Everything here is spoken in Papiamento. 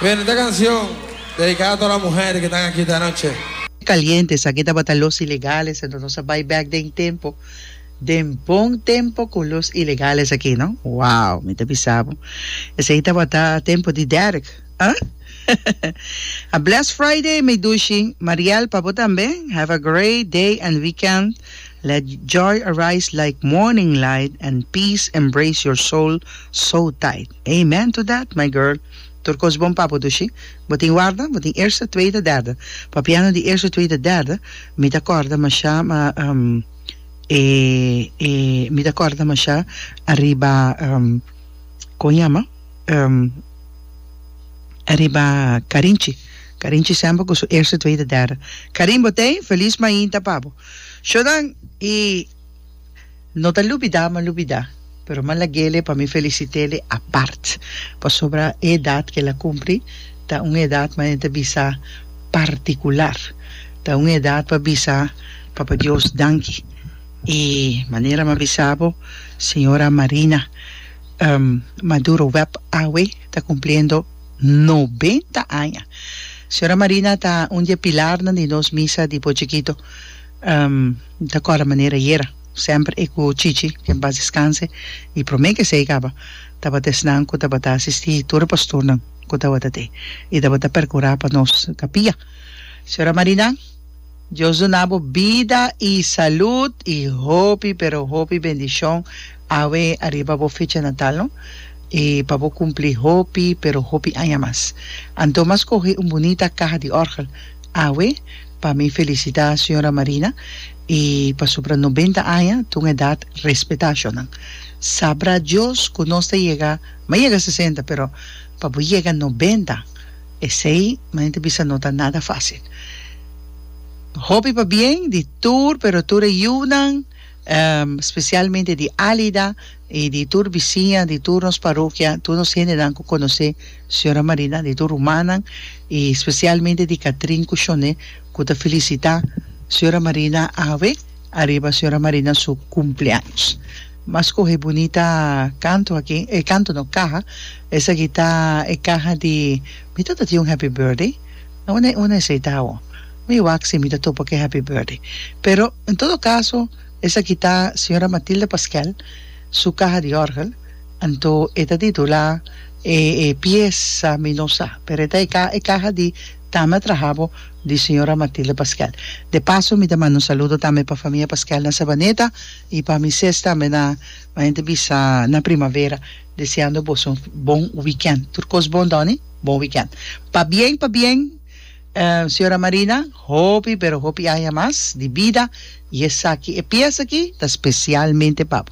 Bueno, esta cancion dedicada a toda la muher que tan aki esta noche. Caliente, esaki tabata los ilegales ento nos a bay back den tempo, den bon tempo cu los ilegales aki no, wow mi ta bisa bo esaki tabata tempo di Derek ah a blessed Friday Medushi, Mariel pa bo tambe have a great day and weekend. Let joy arise like morning light and peace embrace your soul so tight. Amen to that my girl. Tur kos bon pa bo tu shi. Bo tin warda? Bo tin eerste, tweede, derde? Pa piano di eerste, tweede, derde mi ta kòrda masha e e mi ta kòrda masha ariba kon yama ariba Karinchi. Karinchi semper ku su eerste, tweede, derde. Karin Botey, feliz mainta pa bo. Shodan y no ta lubida ma lubida pero ma lagele pa mi felicitele apart pasobra e edad ke el a cumpli ta un edad ma e ta bisa particular ta un edad pa bisa papa Dios danki y manera ma bisa bo señora Marina Maduro Web awe ta cumpliendo Nobenta aña. Señora Marina ta un di e pilarnan di nos misa di Bochekito. Mi ta kòrda manera ayera, semper e ku Chichi, ke en pas deskanse, i promé ke esei kaba, tabata esnan ku tabata asistí tur e pastornan ku tabata te i tabata perkurá pa nos kapia. Señora Marina. Dios dunabo bida y salud y hopi pero hopi bendicion awe ariba bo fecha natal no y pa bo cumpli hopi pero hopi aña mas anto mas coge un bunita caha di orgel awe pa mi felicita señora Marina y pasobra noventa aña ta un edad respetacionan sabra Dios cu nos ta yega ma yega sesenta pero pa bo yega noventa Esei manen ta bisa no ta nada fácil. Hopi pa bien di tur pero tur e yunan specialmente di Alida y di tur bisiña di tur nos parokia tur nos hendenan cu conoce Señora Marina di tur rumannan y specialmente di Catrin cu Shone cu ta felicita Señora Marina awe ariba Señora Marina su cumpleaños. M'a scoge bunita canto aki, eh canto no, caha. Esaki ta e caha di Mi tata tin un Happy Birthday. No, un e, un e esei ta awo. Mi wak si mi ta topa cu e Happy Birthday. Pero, en todo caso, esaki ta Señora Matilda Pasquel su caha di orgel. Anto e ta titula e, e piesa Mi no sa. Pero e ta e ca, e caha di Tame a trahabo di Señora Matilda Pasquel. De paso mi ta manda un saludo tambe pa famia Pasquel na Sabaneta. Y pa Misés tambe na ma hende bisa na primavera deseando boso bon weekend. Tur cos bon Donny, bon weekend. Pa bien pa bien Señora Marina hopi pero hopi aña mas di bida y esaki e pieza aki ta specialmente pa bo.